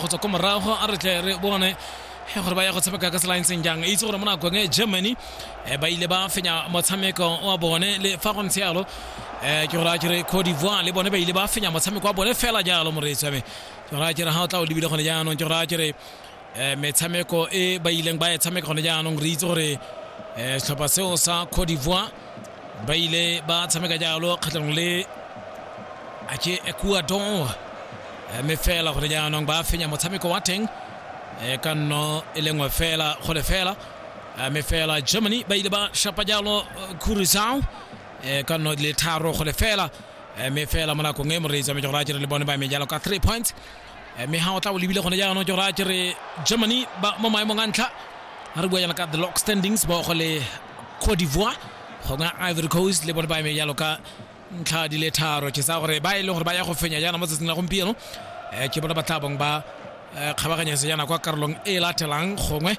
go tswa ko morago a re tle re bone gore ba ya go tshameka ka tsela ntseng jang itse gore mo nakong e germany eh, ba ile ba fenya motshameko wa bone le fa go ntse yalo eh, ke gore a kere cote d'ivoire le bone ba ile ba fenya motshameko wa bone fela jalo moreetsi wa me ke gore a kere ga o tla o lebile gone jaanong ke gore a kere eh, metshameko e ba ileng ba e tshameka gone jaanong re itse gore setlhopha seo sa cote d'ivoire ba ile ba tshameka jalo kgatlhanong le ake ecuador mme fela gore jaanong ba fenya motshameko wa teng e ka nno e le nngwe fela go le fela mme fela germany ba ile ba shapa jalo curisao e ka nno le tharo go le fela mme fela mo nakong e moreetsi wa mejogora jere le bone ba eme jalo ka three points Eh, mme ga o tla o lebile gone jaanong ke gore a kere germany ba mo maemong a ntlha a re bua jana ka the lock standings ba go le cote d'ivoire gongwe ivory coast le bone ba eme jalo ka ntlha di le tharo ke sa gore ba e leng gore ba ya go fenya jaana mo tsatsing la gompieno eh, ke bone ba tla bong ba eh, kgabaganyetse jaana kwa karolong e latelang gongwe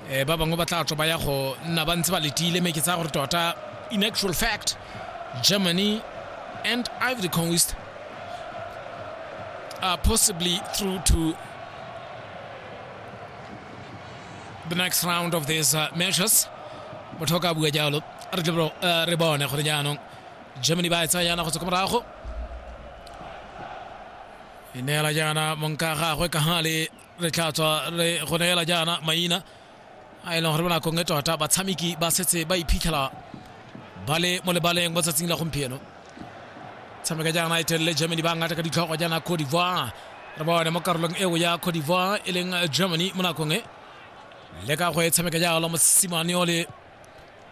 um ba bangwe ba tla tswa ba ya go nna ba ntse ba letile mme ke tsaya gore tota in actual fact germany and ivory coast are possibly through to the next round of these uh, matches motho o ka bua jalo re tle bro- eh, re bone gore jaanong germany ba e tsaya yana go tswa ko morago e neela jaana monka gagwe ka ga le re tla tswa re go neela jaana maina a e leng gore bonakong e tota batshameki ba setse ba iphitlhela ba le mo lebaleng mo tsatsing la gompieno tshameka jaana e telele germany ba ngata ka ditlhogo jaana cote d'ivoire re bone mo karolong eo ya cote d'ivoire e leng germany mo nakong e le ka go e tshameka jalo mosimane o le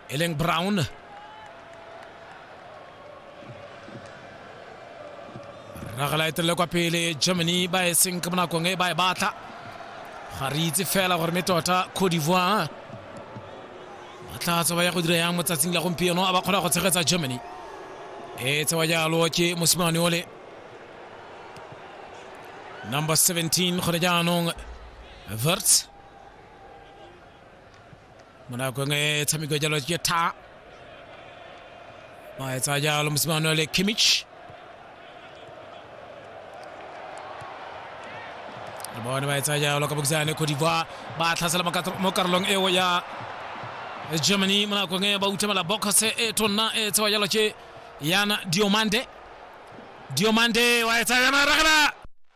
e leng brown ragala e telele kwa pele germany ba e seng ka bonakong e ba e batla ga re itse fela gore me tota cote d'ivoire ba tla tswa ba ya go dira yang mo tsatsing la gompieno a ba kgona go tshegetsa germany e tsewa jalo ke mosimane ole number 17 gone jaanong verts mo nakong e tshameko jalo ke tha ba etsa jalo mosimane le kimich le bone ba etsa jalo ka bokisane cote d'ivoire ba tlhasela mo karolong eo ya germany mo nakong e ba utlhamela bokose e tonna e tsewa jalo ke yana diomande diomande wa etsa yana ragana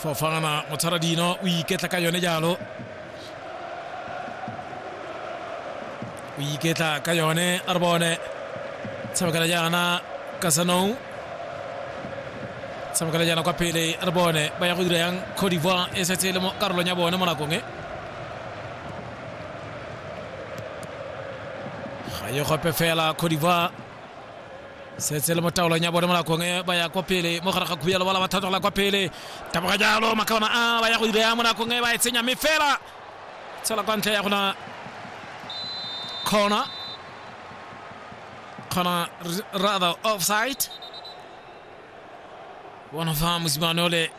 fofana mo tshwara dino o iketla ka yone jalo o iketla ka yone a re bone tshamekela jaana kasanong tshamekela jaana kwa pele a re bone ba ya go dira yang cote d'ivoire e setse e le mo karolong ya bone mo nakong e ga ye gope fela codivoire setse le mo taolong ya bone mo nakong e ba ya kwa pele mo gare ga khuya lebala ba thatogela kwa pele taboga jalo makaona a ba ya go ireya mo nakong e ba e tsenya mme fela tshela kwa ntle ya gona corner corner r- rather offside bona fa mosimane ole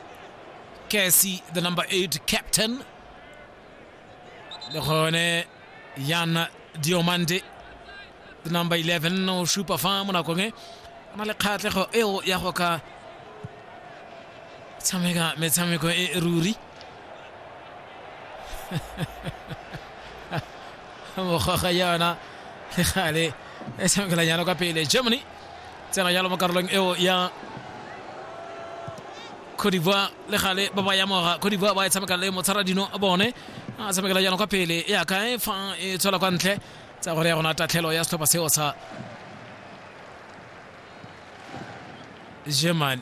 kesi the number 8 captain le gone yana diomande the number 11 o supa fa mo nakong e o na le kgatlhego eo ya go ka tshameka metshameko e e ruri mogoga yona le gale e tshamekela jalo ka pele germany tsena jalo mo karolong eo ya Cote d'Ivoire le gale ba ba yamoga Cote d'Ivoire ba e tshameka le motsharadino a bone a tshamekela jaanong kwa pele e ya kae fa e tswela kwa ntle tsa gore ya gona tatlhelo ya setlhopha seo sa germany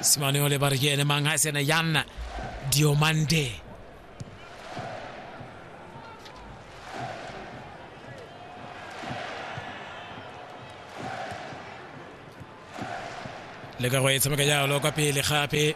simane o le ba re ke ene mang ga e sene yana diomande le ka go e tshameka jalo kwa pele gape